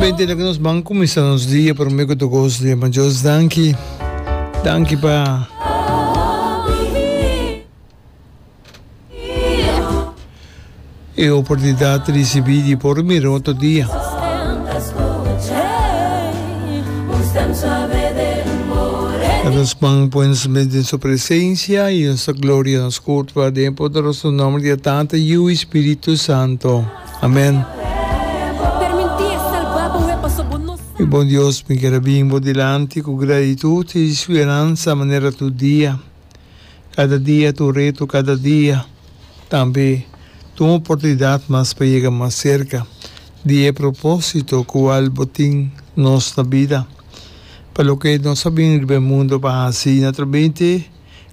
Exactamente lo que nos van comenzar nos día por mí que tu gozo de maar Dios danki danki pa e oportunidad recibi di por mi roto día dat ons man puens met in su presencia y ons gloria nos curva de poderoso nombre de Tata y Espíritu Santo. Amen. Mi bon Dios, mi ker a bin bo dilanti ku gratitud i speransa manera tur dia. Kada dia ta un reto, kada dia tambe ta un oportunidat mas pa yega mas serka di e propósito ku al bo tin nos na bida. Pa loke nos a bin riba e mundu pa hasi na trabente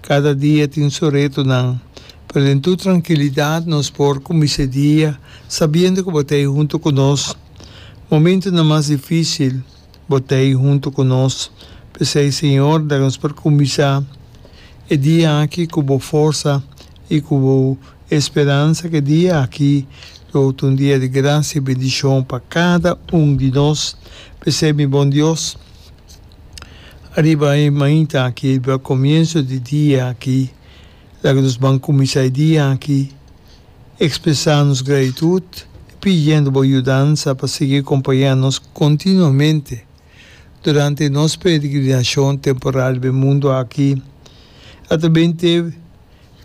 Kada dia tin su retonan, pero den tur trankilidat nos por kuminsá e dia sabiendo ku bo ta ei huntu ku nos. Momentunan mas difísil, bo ta ei huntu ku nos. P'esei, Señor, laga nos por kuminsá e dia aki ku bo forsa i ku bo speransa ku e dia aki lo ta un dia di grasia i bendishon pa kada un di nos. P'esei, mi Bon Dios. Ariba e mainta aki, riba comienso di dia aki, laga nos ban cuminsa e dia aki expresa nos gratitud y pidiendo bo yudansa pa sigui acompaña nos continuamente durante nos peregrinacion temporal riba e mundo aki. A ta ben tep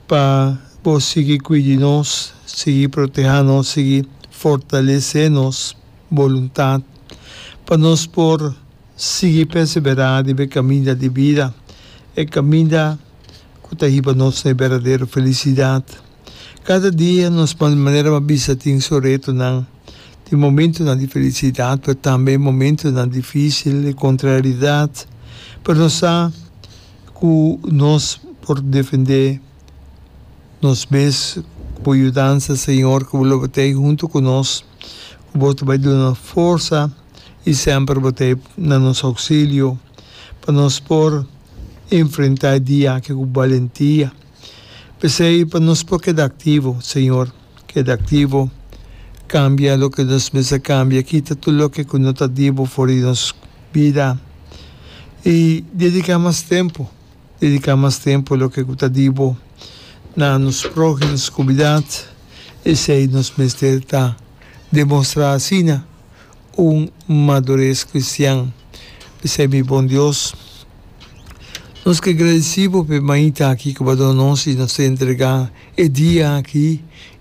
pa bo sigui cuidi nos, sigui proteha nos, sigui fortalece nos. boluntat pa nos por sigui perseberá riba e kaminda di bida, e kaminda ku ta hiba nos na e berdadero felisidat. Kada dia nos manera mas bisa tin su retonan. Tin momentunan di felisidat, pero tambe e momentunan difísil, e kontraridat. Pero nos sa ku nos por defendé nos mes ku bo yudansa, Señor, ku bo lo batei huntu ku nos. ku bo ta bai duna forsa i semper bo ta e na nos ousilio pa nos por enfrentá e dia aki ku balentia. P'esei pa nos por keda aktivo, Señor, keda aktivo, kambia loke nos mester kambia, kita tur loke ku no ta di bo for di nos bida i dediká mas tempu. Dediká mas tempu loke ku ta di bo na nos próhims ku bidad, esei nos mester ta demostrá asina un madures kristian. P'esei, mi bon Dios, nos ke gradesí bo pa e mainta akí ku bo a duna nos i nos ta entregá e dia akí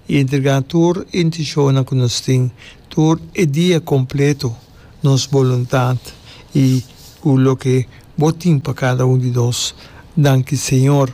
i entregá tur e intishonnan ku nos tin tur e dia kompleto. nos boluntat y cu loke Bo tin pa cada un di nos. Danki, Señor.